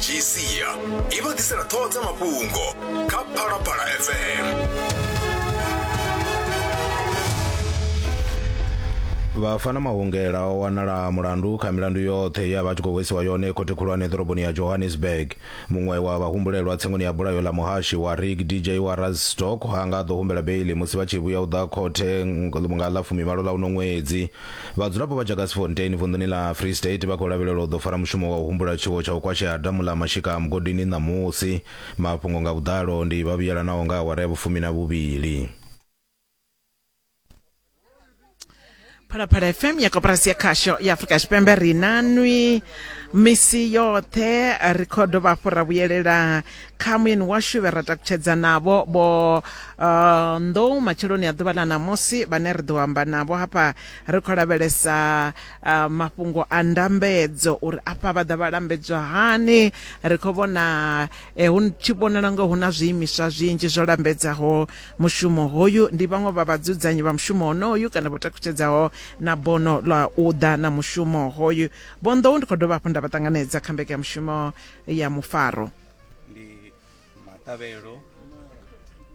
gca i vha ḓisela ṱhoho dza mafhungo kha phalaphala fm vhafana mahungela o wanala mulandu kha milandu yoṱhe ya vha tshi khou hwesiwa yone khothe khulwane ḓoroboni ya johannesburg muṅwe wa vhahumbulelwa tsengoni ya bulayo ḽa muhashi wa rig dj wa razstock ha nga ḓo humbela beili musi vha tshi vhuya u ḓa khothe nga ḽa fumimalo ḽa uno ṅwedzi Vhadzulapo vha Jagersfontein vunḓuni ḽa Free State vha khou lavhelelwa u ḓo fara mushumo wa u humbula tshiwo tsha u kwashea ha damu ḽa Mashika a Mugodini ṋamusi. Mafhungo nga vhuḓalo ndi vha vhuyelanaho nga awara ya vhufumi na vhuvhili. Phalaphala FM ya koporasi ya khasho ya Afrika Tshipembe ri na nwi misi yoṱhe ri kho dovha hafhu ra vhuyelela kha muyeni washu vhe ra takutshedza navho vho uh, nḓou matsheloni a ḓuvha ḽa ṋamusi vhane ri ḓo amba navho hafha ri khou lavhelesa uh, mafhungo a ndambedzo uri afha vha ḓa vha lambedzwa hani ri khou vhona eh, hu tshi vhonala ngo hu na zwiimiswa zwinzhi zwo lambedzaho mushumo hoyu ndi vhaṅwe vha vhadzudzanyi vha mushumo honoyu kana vho takutshedzaho na bono ḽa u ḓa na mushumo hoyu vho nḓou ndi khou dovha hafhu nda vha ṱanganedza kha mbekanyamushumo ya mufaro. Ndi maṱavhelo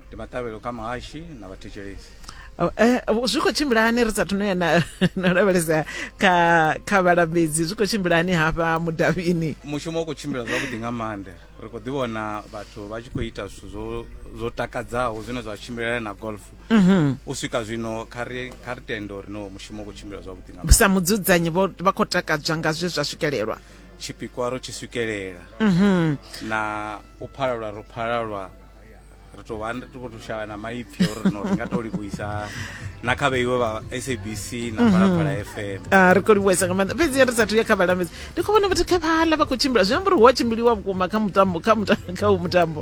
ndi maṱavhelo kha muhashi na vhathetshelesi. Oh, eh, zwi khou tshimbila hani ri sathu no ya na lavhelesa kha kha vhalambedzi zwi khou tshimbila hani hafha mudavhini mushumo u khou tshimbila zwavhuḓi nga maanḓa ri khou ḓi vhona vhathu vha tshi khou ita zwithu zwo zwo takadzaho zwine zwa tshimbilelana na golf mhm. u swika zwino kha ri kha ri tende uri no mushumo u khou tshimbila zwavhuḓi nga sa mudzudzanyi vha khou takadzwa nga zwe zwa swikelelwa tshipikwa ro tshi swikelela mhm. na u phalalwa ro phalalwa ri tou vha ri khou shavha na maipfi uri rino ri nga tou livhuisa na kha vheiwe vha sabc na mhm. phalaphala fm ah, ri khou livhuisa nga maanḓa fhedzi ri sathu ya kha vhalambedzi ndi khou vhona vhathu kha vhala vha khou tshimbila zwi amba uri hu a tshimbiliwa vhukuma kha mutambo kha mutambo kha u mutambo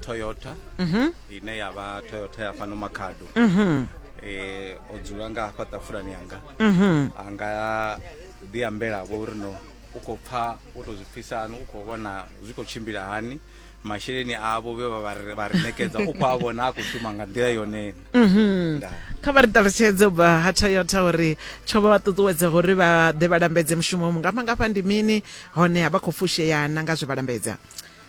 toyota mhm. ine ya vha toyota ya fhano makhado mhm. eh, o dzula nga hafha ṱafulani yanga mhm. a nga ḓi ambela vho uri no u khou pfha u tou zwi pfisa hani u khou vhona zwi khou tshimbila hani masheleni avho vhe vha ri nekedza u khou a vhona a khou shuma nga nḓila yonena mhm. kha vha ri ṱalutshedze ubva ha toyota uri tsho vha vha ṱuṱuwedza uri vha ḓe vha lambedze mushumo mungafha ngafha ndi mini hone a vha khou fusheyana nga zwe vha lambedza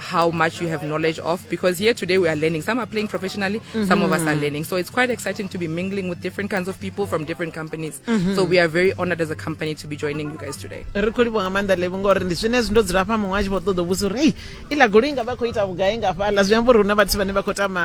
how much you have knowledge of because here today we are learning. Some are playing professionally, mm-hmm. some of us are mm-hmm. learning. So it's quite exciting to be mingling with different kinds of people from different companies. Mm-hmm. So we are very honored as a company to be joining you guys today. ri khou livhuwa nga maanḓa levi ngori ndi zwine zwi ndo dzula fha muṅwe a tshi vho ṱoḓa vhusa uri hei iḽa goloi nga vha khou ita vhugai nga fhaḽa zwi amba uri hu na vhathu vhane vha khou tama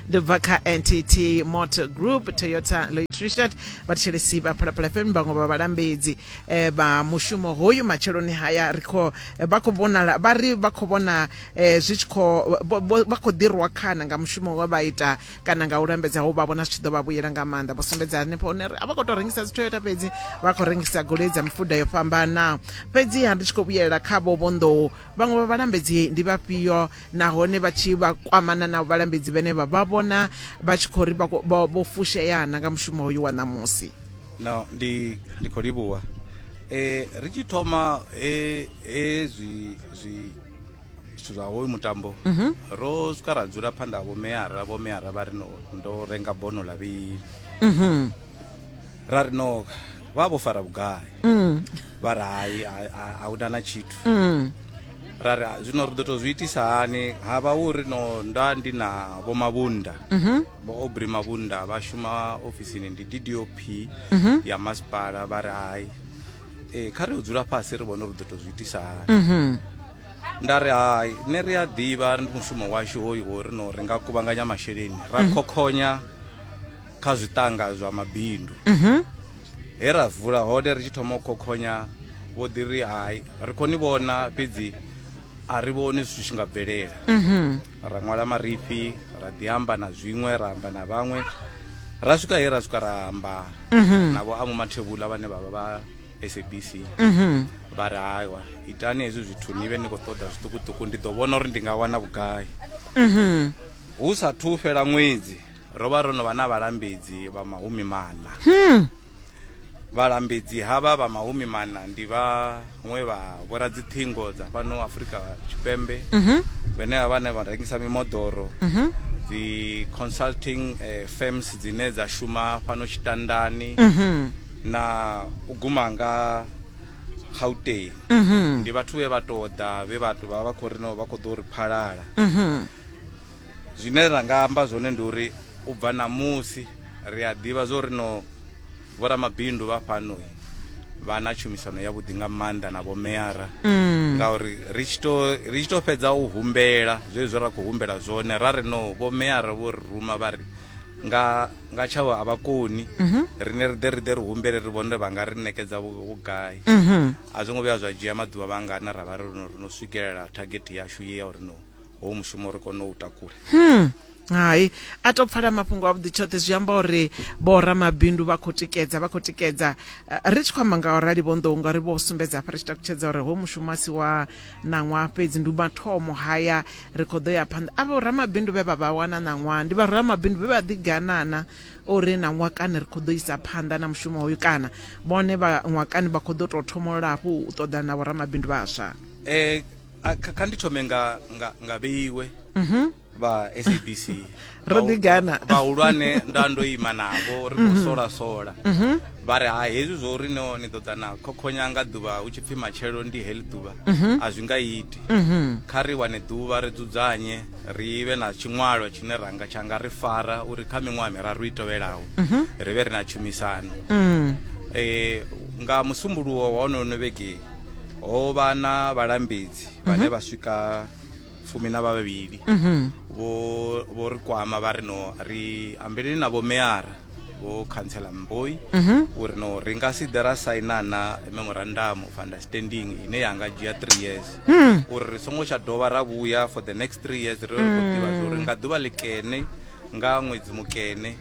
ndo bva kha ntt motor group toyota loitrishat vhathetshelesi vha phalaphala fm vhaṅwe vha vhalambedzi eh, vha mushumo hoyu matsheloni haya ri khou eh, vha khou vhonala vha ri vha khou vhona eh, zwi tshi khou vho- vho- vha khou ḓirwa khana nga mushumo we vha ita kana nga u lambedza ho vha vhona zwi tshi ḓo vha vhuyela nga maanḓa vho sumbedza hanefho hune ri a vha khou tou rengisa dzi toyota fhedzi vha khou rengisa goloi dza mifuda yo fhambanaho fhedziha ndi tshi khou vhuyelela kha vho vhonḓou vhaṅwe vha vhalambedzi ndi vhafhio nahone vha tshi vha kwamana na vhalambedzi vhene vha vha vhona vha tshi khou ri vho fusheana nga mushumo hoyu wa ṋamusi no ndi ndi khou livhuwa e, ri tshi thoma e, e, zwi zwi zwithu zwa hoyu mutambo mm -hmm. ro swika ra dzula phanḓa ha vhomeara vhomeara vha ri ndo renga bono lavhili mm -hmm. ra ri no vha vho fara vhugai mm. vha ri hai a hu na na tshithu mm. ra ri zwino ri ḓo tou zwi itisa hani ha vha hu ri no nda ndi na vho mavhunda mhm. vho obri mavhunda vha shuma ofisini ndi d d o p mhm. ya masipala vha ri hai e, kha ri u dzula fhasi ri vhone ri ḓo tou zwi itisa hani mhm. nda ri hai nṋe ri a ḓivha ri ndi mushumo washu hoyu wo ri no ri nga kuvhanganya masheleni ra khokhonya mm -hmm. kha zwiṱanga zwa mabindu mhm. he ra vula hone ri tshi thoma u khokhonya vho ḓi ri hai ri khou ni vhona fhedzi a ri vhoni zwithu tshi nga bvelela mhm. ra ṅwala marifhi ra ḓi amba na zwiṅwe ra amba na vhaṅwe ra swika he ra swika ra amba mhm. navho a mumathevhula vhane vha vha vha sabc mhm. vha ri haiwa itani hezwi zwithu ni vhe ni khou ṱoḓa zwiṱukuṱuku ndi ḓo vhona uri ndi nga wana vhugai hu sa thu fhela ṅwedzi Ro vha ro no vha na vhalambedzi vha mahumi maṋa. Hmm. Vhalambedzi havha vha mahumi maṋa ndi vhaṅwe vha vhoradziṱhingo dza fhano Afrika Tshipembe mhm. vhane vha vhane vha rengisa mimoḓoro mhm. dzi consulting eh, firms dzine dza shuma fhano Tshitandani mhm. na u guma nga Gauteng ndi vhathu vhe vha tou ḓa vhe vhathu vha vha khou ri no vha khou ḓo ri phalala zwine ra nga amba zwone ndi uri u bva ṋamusi ri a ḓivha zwo ri no vhoramabindu vha fhano vha na tshumisano ya vhuḓi nga maanḓa na vhomeara mm. ngauri ri tshi to fhedza u humbela zwezwo ra khou humbela zwone ra ri no vhomeara vho ri ruma vha ri nga nga tshawo a vha koni mhm. rine ri ḓe ri ḓe ri humbele ri vhone vha nga ri ṋekedza vhugai mhm. a zwo ngo vhuya zwa dzhia maḓuvha vhangana ra vha ri no swikelela thageti yashu ye ya uri no hoyu mushumo ri kone u takula hmm. hai a to pfala mafhungo avhuḓi tshoṱhe zwi amba uri vhoramabindu vha khou tikedza vha khou tikedza eh, ri tshi khou amba nga orali vhonḓou ngauri vho sumbedza hafha ri tshi takutshedza uri ho mushumo a si wa ṋaṅwaha fhedzi ndi mathomo haya ri khou ḓo ya phanḓa a vhoramabindu vhe vha vha wana ṋaṅwaha ndi vharamabindu vhe vha ḓiganana uri na ṅwakani ri khou ḓo isa phanḓa na mushumo hoyu kana vhone vha ṅwakani vha khou ḓo tou thomolola hafhu u ṱoḓana na vhoramabindu vhaswa um A, kha kha ndi thome nga nga nga vheiwe vha sabc Ro Vhahu- ḓigana. vhahulwane nda ndo ima navho ri khou sola sola vha ri ha hezwi zwo uri no ni ḓo ḓa na khokhonya nga ḓuvha hu tshi pfhi matshelo ndi heḽi ḓuvha a zwi nga iti kha ri wane ḓuvha ri dzudzanye ri vhe na tshiṅwalwa tshine ra nga tsha nga ri fara uri kha miṅwaha miraru i tevhelaho ri vhe ri na tshumisano eh nga musumbuluwo wa honono vhege ho vha na vhalambedzi vhane vha swika fumi na vhavhili vho vho ri kwama vha ri no ri ambeleni na vhomeara vho khantsela mboi uri no ri nga si ḓe ra saina na memorandum of understanding ine ya nga dzhia three years uri ri songo tsha dovha ra vhuya for the next three years ri khou ḓivha zwo ri nga ḓuvha ḽikene nga ṅwedzi mukene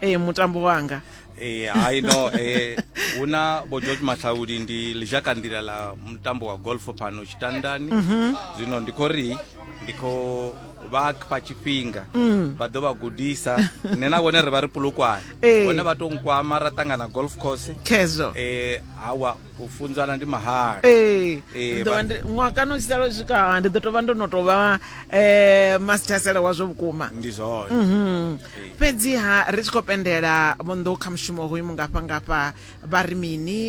ee mutambo wanga ee hai no ee hu na vho george mahlaudi ndi lizhaka nḓila ḽa mutambo wa golf pano tshitandani mhm. zwino ndi khou ri ndi khou vha fha tshifhinga mm. vha ḓo vha gudisa nṋe na vhone ri vha ri pulukwane vhone vha to nkwama ra ṱangana golf course khezwo um hawa u funzana ndi mahala ee ndi ḓo vha ndi ṅwaha kana u tshi sala u swika ndi ḓo tou vha ndo no tou vha um masithasela wazwo vhukuma ndi zwone Mhm. fhedziha ri tshi khou pendela vhonḓou kha mushumo hoyu mungafha ngafha vha ri mini